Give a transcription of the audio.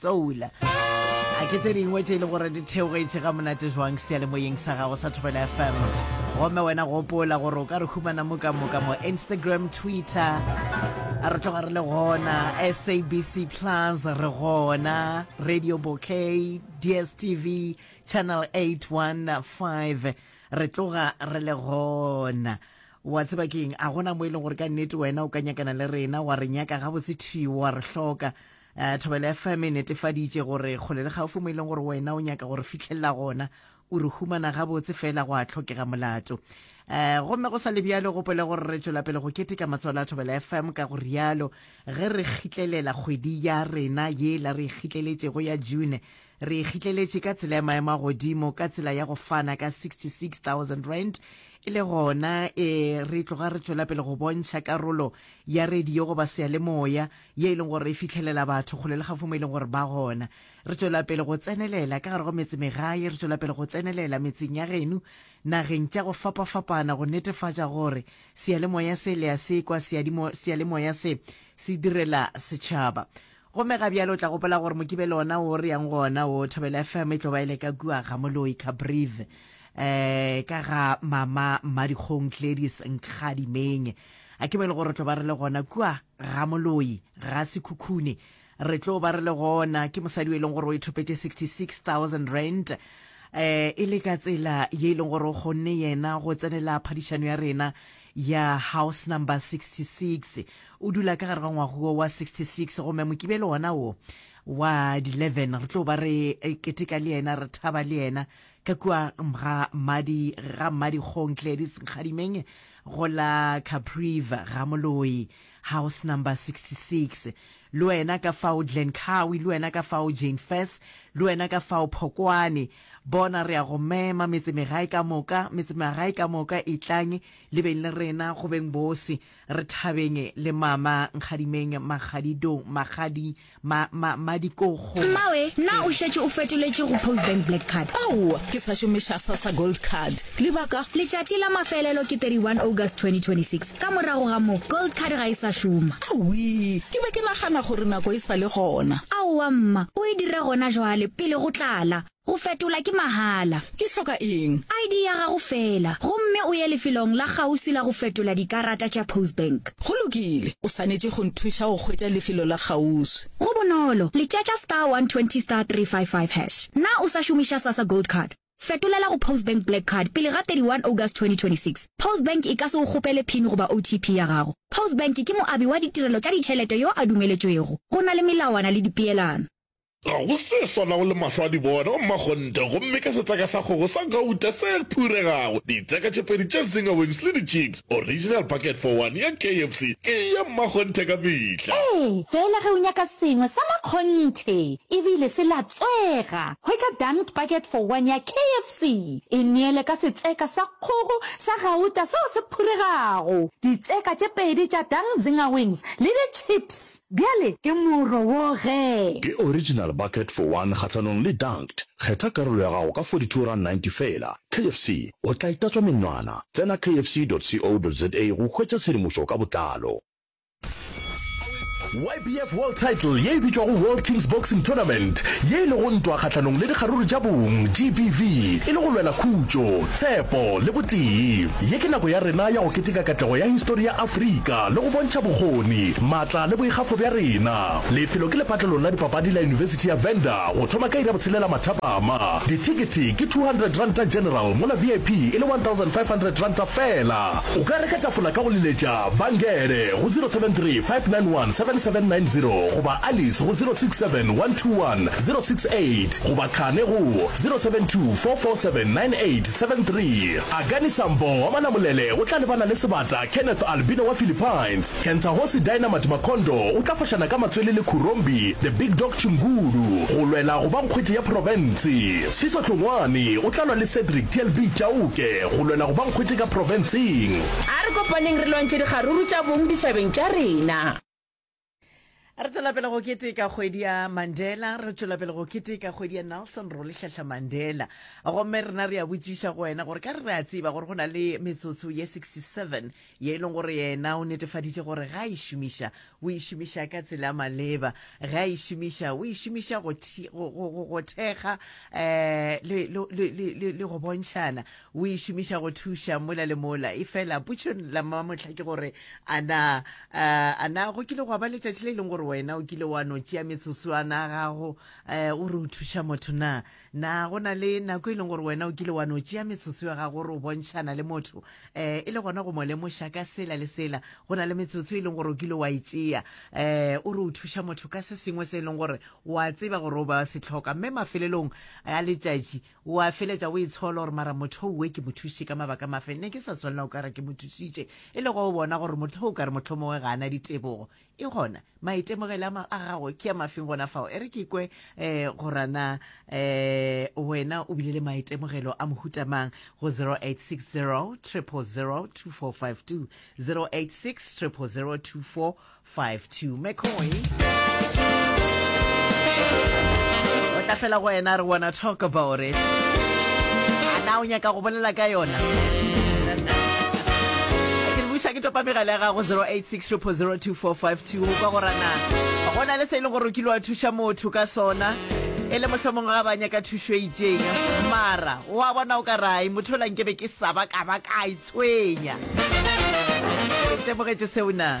soul a ke tse dingwe tse e le gore di theogetše ga monate jwang seyalemoyeng sa gago sa thobela fm gomme wena gopola gore o ka re humana mo ka moka mo instagram twitter a re tloga re le gona sabc plus re gona radio bokay dstv channel 815 re tloga re le gona wa tseba keng a gona mo e leng gore ka nnete wena o ka nyakana le rena wa re nyaka gabotse thiwa re hloka Uh, Thobela FM e netefaditše gore kgole le gaufi mo e leng gore wena o nyaka gore fihlelela gona o re humana gabotse fela go a tlhokega molato um gomme go sa le bjalo gopole gore re tšwela pele go keteka matswalo a thobela fm ka go rialo ge re kgitlelela kgwedi ya rena ye la re kgitleletšego ya june re kgitleletše ka tsela ya maemo a godimo ka tsela ya go fana ka 66000 rand e le gona e re tloga re tšwela pele go bontšha karolo ya radio goba seyalemoya ye e leng gore e fihlelela batho kgole le gafo mo e leng gore ba gona. Re tšwela pele go tsenelela ka gare go metsemegae, re tšwela pele go tsenelela metseng ya genu, nageng tša go fapafapana go netefatša gore seyalemoya se le a se kwa, seyadimo, seyalemoya se se direla setšhaba. Gomme ga bjale o tla gopola gore Mokibelo ona wo re yang go ona wo, Thobela FM e tlo ba e le ka kua ga Moloi Cabrive, um ka ga Mama Mmadikgong Gladys Nkgadimeng. A ke mo e le gore re tlo ba re le gona kua Ramoloi, Rasekhukhune, re tlo ba re le gona, ke mosadi e leng gore o ithopetše 66,000 rand um e le ka tsela ye e leng gore o kgonne yena go tsenela phadišano ya rena ya house number 66 o dula ka gare ga ngwaguo wa 66 gome mokibelo wona wo wa di-11 re tlo ba re eh, keteka le yena re thaba le yena ka kua ga mmadi ga mmadi kgong gladys nkgadimeng Go la Capriva, Ramoloi, house number 66, le wena ka fao Glencowie, le wena ka fao Jane Fess, le wena ka fao Phokwane. Bona re a go mema, metsemegae ka moka, metsemagae ka moka, etlang le beng le rena, go beng bose, re thabeng le Mama Nkgadimeng, Magadidong, Magadi, Ma, ma, madikokgo. Mmawe, na o šetše o fetoletše go Post Bank Black Card? Aowa, ke sa šomiša Sassa Gold Card. Lebaka? Letšatši la mafelelo ke 31 August 2026. Ka morago ga moo, Gold Card ga e sa šoma. Awii, ke be ke nagana gore nako e sa le gona. Aowa, mma. O e dira gona jwale, pele go tlala. Go fetola ke mahala. Ke hloka eng? ID ya gago feela, gomme o ye lefelong la kgauswi la go fetola dikarata tša Postbank. Go lokile. O swanetše go nthuša go hwetša lefelo la kgauswi. Go bonolo, letšatša star 120 star 355 hash. Na o sa šomiša Sasa Gold Card? Fetolela go Postbank Black Card pele ga 31 August 2026. Postbank e ka se go kgopele pin goba OTP ya gago. Postbank ke moabi wa ditirelo tša ditšhelete yo a dumeletšwego. Go na le melawana le dipeelano. Ga go se swanago le mahlo a dibona, O mmakgonte, gomme ka setseka sa kgogo sa gauta se phuregago, ditseka tše pedi tša zinger wings le dichips, original bucket for one ya KFC ke ya mmakgonthe ka mehla. Ee, feela ge o nyaka sengwe sa makgonthe e bile se latswega, hwetša dunked bucket for one ya KFC. E neele ka setseka sa kgogo sa gauta seo se phuregago, ditseka tše pedi tša dunked zinger wings le dichips. Bjale ke moro wo ge. Ke original bucket for one kgahlanong le dunked. Kgetha karolo ya gago ka 42 rand 90 feela. KFC, o tla itatswa menwana. Tsena kfc.co.za go hwetša tshedimošo ka botlalo. YBF World Title ye e bitšwago World Kings Boxing Tournament ye e lego ntwa kgahlanong le dikgaruru tša bong, GBV, e le go lwela khutšo. Tshepo le botee. Ye ke nako ya rena ya go keteka katlego ya histori ya Afrika le go bontšha bokgoni, maatla le boikgafo bja rena. Lefelo ke lepatlelong la dipapadi la Yunibesithi ya Venda go thoma ka iri ya botshelela mathapama. Dithekete ke R200 general mola VIP e le R1,500 fela. O ka reka tafola ka go leletša Vangele go 073 591 7790 goba Alice go 067 121 068. goba qhane go 0724479873. Agani Sambo wa Malamulele o tla lebana le sebata Kenneth Albino wa Philippines. Kentsahosi Dynamite Makhondo o tla fošana ka matswele le Khurombi The Big Dog Chimgulu go lwela go ba nkgwete ya profense. Siso Tlhongwane o tla lwa le Cedric TLB Chauke go lwela go ba nkgwete ka profenseng. A re kopaneng re lwantšhe dikgaruru tša bong ditšhabeng tša rena. re tswela pele go keteka kgwedi ya mandela re tswela pele go keteka kgwedi ya nelson ro lehlahla mandela gomme rena re ya botsiša go wena gore ka re re a tseba gore go na le metsotso ye 67 ye e leng gore yena o netefaditše gore ga a e šomiša o e šomiša ka tsela ya maleba ga a e šomiša o e šomiša go thekga um le go bontšhana O e šomiša go thuša mola le mola. Efela potšo la mamohla ke gore, a na, uh, a na go kile gwa ba letšatši le e leng gore wena o kile wa no tšea metsotswana a gago uh, o re o thuša motho na? Na go na le nako e leng gore wena o kile wa no tšea metsotso ya gago gore o bontšhana le motho uh, e le gona go mo lemoša ka sela le sela? Go na le metsotso e leng gore o kile wa e tšea uh, o re o thuša motho ka se sengwe se e leng gore wa tseba gore o ba se tlhoka mme mafelelong a letšatši O a feletša o itshola gore, Mara moth'o we ke mo thušitše ka mabaka a mafe? Ne ke sa swanela go ka re ke mo thušitše, e le go bona gore moth'o o ka re mohlomongwe ga a na ditebogo. E gona, maitemogelo a a gago ke a mafeng gona fao? E re ke kwe um gore na um wena o bile le maitemogelo a mohuta mang go 0860 000 2452, 0860 000 2452. 52 mccoy o tla fela go wena re wanna talk about it ana o nyaka go bolela ka yona ke buša ke topa megala ya gago 086 02452 o kwa gorana go na le se e leng gore o kile wa thuša motho ka sona e le mohlomong ga ba nyaka thušo e itseng mara wa bona o ka rai motho o lankebe ke saba ka ba ka Tswenya. O itemogetše seo na?